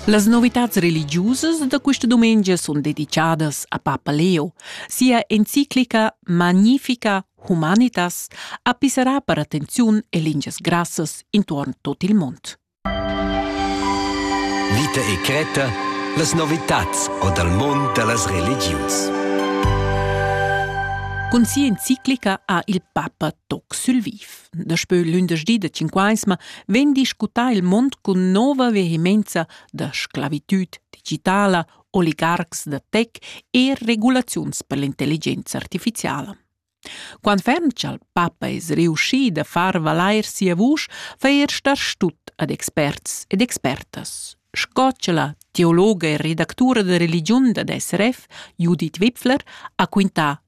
Las novitads religiusas da questa dumengia sun dedichadas a Papa Leo. Sia enciclica Magnifica Humanitas ha pisserà per attenziun e lingias grassas intuorn tot il mond. Vita e Creta, las novitats o dal mond da las religius. Cun sia enciclica ha il Papa toc sul viv. Daspö lündeschdi da Cinquaisma vegn discutà il mond cun nova vehemenza da sclavitüd digitala, oligarcs da tech e regulaziuns per l'intelligenza artificiala. Quant ferm cha'l papa es riuschi da far valair sia vusch, fa er star stut ad experts ed expertas, sco cha la teologa e redactura da religiun dad SRF, Judith Wipfler, ha quintà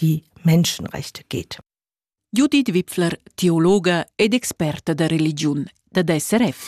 die Menschenrechte geht. Judith Wipfler, teologa ed experta da religiun dad SRF.